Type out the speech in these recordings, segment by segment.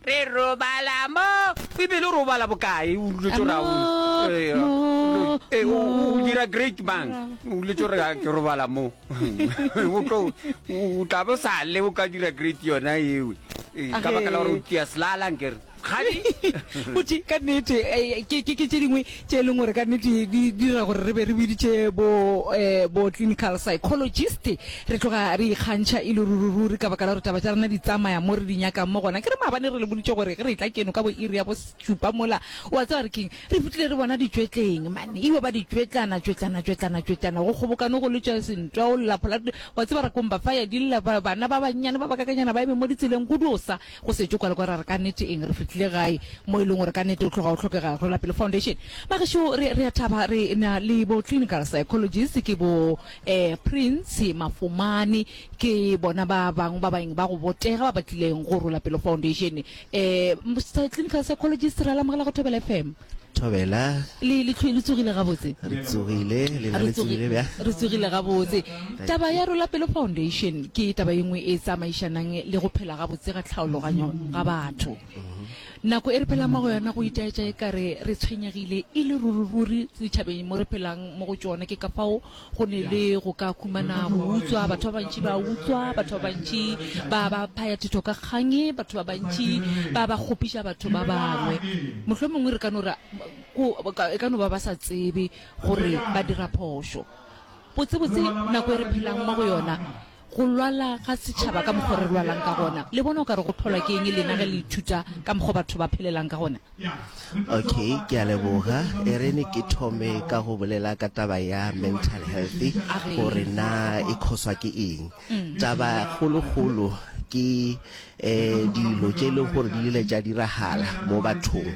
re robala mo bibele o robala bokae o duletse gore o dira great mang o duletse gore ke robala mo o tla bo sa le o ka dira great yona ewe ka baka la gore o tia selalang kere gadi ka nnete ke tse dingwe tše e leng gore ka nnete di dira gore re be re biditše bo um bo clinical psychologist re tloga re ikgantšha e le ruri-ruri ka baka la gore taba tša rena di tsamaya mo re di nyakang mo gona ke re maabane re le boditše gore ge re etla keno ka bo iri ya bošupa mola wa tseba re keng re fitlhile re bona ditšwetleng mane eo ba ditšwetlana tšwetlana tšwetlana tšwetlana go kgobokane go letša sentwa o lla phola wa tseba re komba faya di lla bana ba bannyane ba bakakanyana ba eme mo ditseleng go dosa Go setšo kwale kwa ra re ka nete eng, re fihlile gae mo e leng gore ka nete o tloga o hlokega. Rwelapele Foundation, bagešo re re a thaba re na le bo clinical psychologist ke bo eh Prince Mafumane ke bona ba bangwe ba baeng ba go botega ba ba tlileng go Rwelapele Foundation. Eh clinical psychologist ra le amogela go Thobela FM. Thobela. Le le tlhoe le tsogile gabotse. Re tsogile le na le tsogile bja. Re tsogile gabotse. Taba ya Rola Pelo Foundation ke taba e nngwe e tsamaišanang le go phela gabotse ga tlhaologanyo ga batho. Nako e re phelang mo go yona go itaetša e kare re tshwenyegile e le ruri ruri ditšhabeng mo re phelang mo go tšona ke ka fao Go ne le go ka humana go utswa, batho ba bantši ba utswa, batho ba bantši ba ba phaya thetho ka kgang, batho ba bantši ba ba kgopiša batho ba bangwe. Mohlomongwe re ka no ra, ko, e ka no ba ba sa tsebe gore ba dira phošo. Botsebotse nako e re phelang mo go yona go lwala ga setšhaba ka mokgwa re lwalang ka gona le bona o ka re go phelwa ke eng lena ge le ithuta ka mokgwa batho ba phelelang ka gona okay ke a leboga e re ne ke thome ka go bolela ka taba ya mental health gore na e khoswa ke eng mm. taba kgolokgolo ke um dilo tše e lego gore di ile tša diragala mo bathong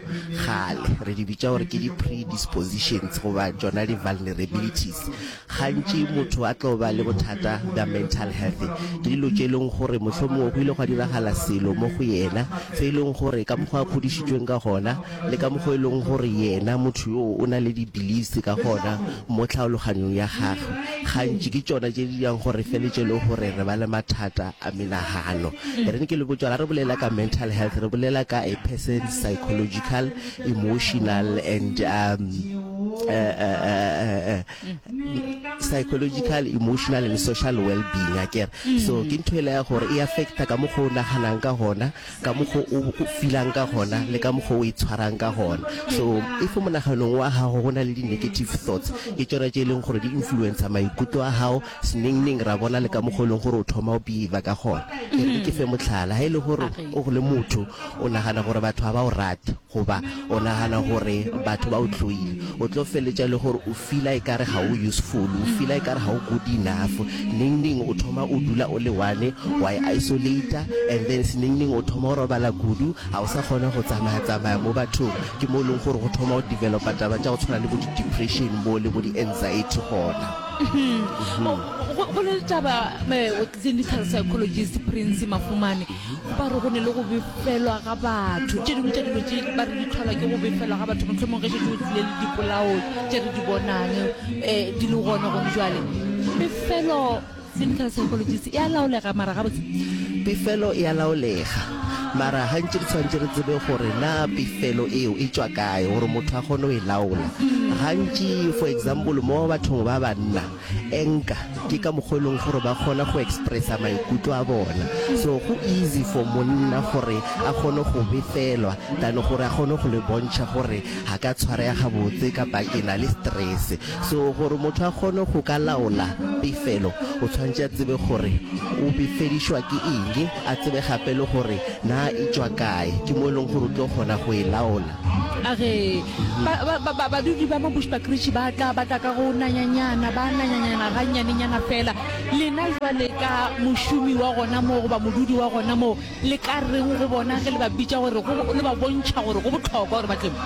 gale re di bitša gore ke di-predispositions goba tšona di-vulnerabilities gantši motho a tlo ba le bothata bja mental health ke dilo tše e leng gore mohlomongwe go ile gwa diragala selo mo go yena se e leng gore ka mokgwa a kgodišitšweng ka gona le ka mokgwa e leng gore yena motho yoo o na le di-beliefs ka gona mo tlhaologanyong ya gagwe gantši ke tšona tše di yang gore feletse e le gore re ba le mathata a menagano e re ke le botsa ga re bolela ka mental health re bolela ka a person's psychological emotional and um, uh, uh, uh, uh, psychological emotional and social well-being a kere so ke ntho e le ya gore e affecta ka mo go naganang ka gona ka mokgo o filang ka gona le ka mokgo o itshwarang ka gona so if monaganong wa gago go na le di-negative thoughts ke tsona tse e leng gore di influencer maikutlo a gago senengneng ra bona le ka mokgo e leng gore o thoma o behave ka gona ke fe motlhala ga e le gore o le motho o nagana gore batho ga ba o rate Goba o nagana gore batho ba o hloile. O tlo feletša e le gore o feela ekare ga o useful, o feela ekare ga o good enough. Neng neng o thoma o dula o le one, wa e isolater, and then se neng neng o thoma o robala kudu, ga o sa kgona go tsamaya tsamaya mo bathong. Ke mo e leng gore go thoma go developa taba tša go tshwana le bo di depression bo le bo di anxiety gona. Go na le taba. Clinical Psychologist Prince Mafumane o ba re go ne le go befelwa ga batho. Tše dingwe tša dilo tše ba re di tlhola ke go befelwa ga batho mohlomong ge šetse o tlile le dipolao tše re di bonang um di le gone gone jale befelo clinical psychologist e a laolega mara gabotse pefelo e a laolega mara gantši re tshwanetse re tsebe gore na pefelo eo e tšwa kae gore motho a kgone go e laola gantši for example mo bathong ba banna Enka ke ka mokgwa e leng gore ba kgona go expressa maikutlo a bona so go easy for monna gore a kgone go befelwa than gore a kgone go le bontšha gore ga ka tshwarega gabotse kapa ke na le stress so gore motho a kgone go ka laola pefelo o tshwanetse a tsebe gore o befedišwa ke eng a tsebe gape le gore na e tšwa kae ke mo e leng gore o tlo kgona go e laola. A re, ba, ba, ba, ba, badudi ba mo Bushbuckridge ba tla, ba tla ka go nanyanyana, ba nanyanyana gannyanenyana fela. Lena jwale ka mošomi wa gona moo goba modudi wa gona moo, le ka reng go bona ge le ba bitša gore, go, le ba bontšha gore go bohlokwa gore ba tle mo?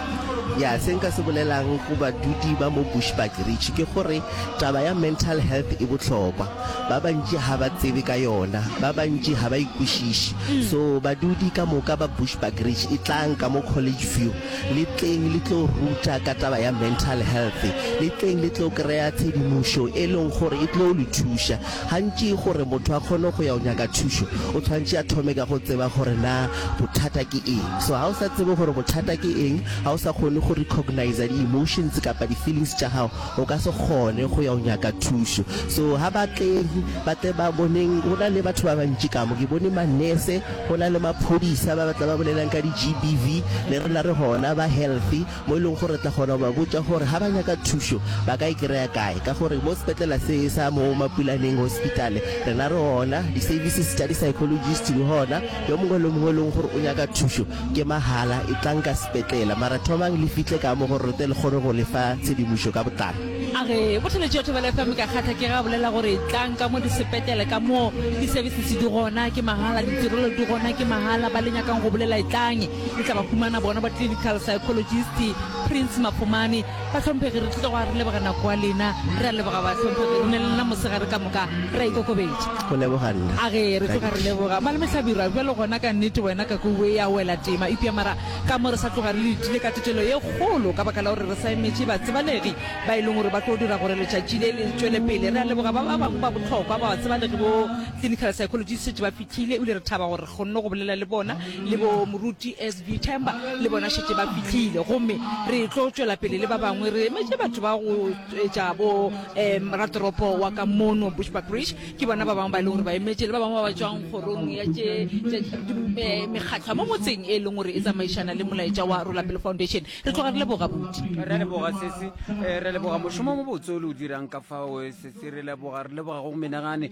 Ya, se nka se bolelang go badudi ba mo Bushbuckridge ke gore taba ya mental health e bohlokwa. Ba bantši ga ba tsebe ka yona, ba bantši ga ba e kwešiše. So badudi ka moka ba Bushbuckridge, etlang ka mo College View, le tleng le tlo ruta ka taba ya mental health, le tleng le tlo kry-a tshedimošo e leng gore e tlo le thuša. Gantši gore motho a kgone go ya go nyaka thušo, o tshwanetse a thome ka go tseba gore na bothata ke eng. So ga o sa tsebe gore bothata ke eng, ga o sa kgone go recogniser di-emotions kapa di-feelings tša gago, O ka se kgone go ya go nyaka thušo. So ha ba tle, ba tle ba boneng go na le batho ba bantši ka mo. Ke bone manese, go na le maphodisa ba ba tla ba bolelang ka di-GBV, le rena re gona ba health mo e leng gore re tla kgona go ba botša gore ha ba nyaka thušo ba ka e kry-a kae. Ka gore mo sepetlela se sa mo Mapulaneng Hospital rena re gona, di-services tša di-psychologist di gona. Yo mongwe le yo mongwe e leng gore o nyaka thušo Ke mahala, etlang ka sepetlela, mara thomang le fihle ka mo go re tle le kgone go le fa tshedimošo ka botlalo. A re, Botholetšo ya Thobela FM ka kgatha ke ge a bolela gore tlang ka mo disepetele ka mo, di-services di gona ke mahala, ditirelo di gona ke mahala, ba le nyakang go bolela etlang, le tla ba humana bona ba-clinical psychologist, Prince Mafumani, Bahlomphegi, re tlile go a re leboga nako ya lena, re a leboga bahlomphegi, re ne le nna mosegare ka moka, re a ikokobetša. Go leboga nna. A ge re tloga re leboga. Malome Hlabirwa, bjalo gona ka nnete wena ka kwe we ya wela tema, eupša mara ka mo re sa tloga re letile ka tetelo ye kgolo ka baka la gore re sa emetše batsebalegi ba e leng gore ba tlo dira gore letšatši le le tšwele pele. Re a leboga ba ba bangwe ba bohlokwa ba batsebalegi bo Clinical Psychologists šetše ba fihlile ebile re thaba gore re kgonne go bolela le bona. le bo moruti sb themba le bona šetse ba fitlhile gomme re tlo tšwela pele le ba bangwe re emetše batho ba go etša bo um ratoropo wa ka mono bushbackbridge ke bona ba bangwe ba e leng gore ba emetše le ba bangwe ba ba tswang kgorong ya tše mekgatlho mo motseng e leng gore e tsamaišana le molaetša wa rolapele foundation re tloga re leboga buti re leboga sese eh, re leboga mošomo mo botse o le o dirang ka fao eh, sese re leboga re leboga go menagane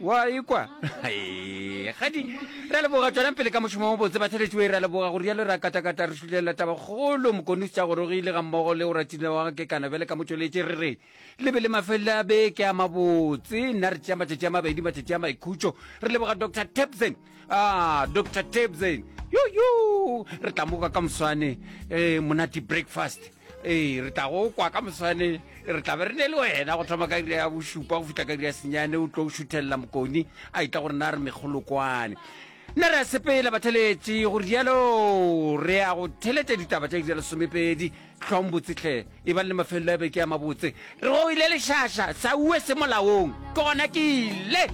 wa ikwa ga di ra leboga tswela pele ka mošomo o botse batheletši we ra leboga go rialo ra katakata re šulelela tabakgolo mokonus tša gorogile ga mmogo le o ratile wa kekana bjale ka motšweletše re re le be le mafelelo a beke a mabotse nna re tšea matšatši a mabedi matšatši a maikhutšo re leboga dr tapson ah dr tabsen yoyo re tla moka ka moswane um monate breakfast ee re tla go kwa ka moswane re tla be re ne le wena go thoma ka ira ya bošupa go fitlha ka ira ya senyane o tlo go šuthelela mokoni a itla gore na re megolokwane nna re a sepela batheletše go rialo re ya go theletša ditaba tša ira lesomepedi tlhong botsetlhe e bang le mafelelo ya beke ya mabotse re go ile lešaša sa ue se molaong ke gona ke ile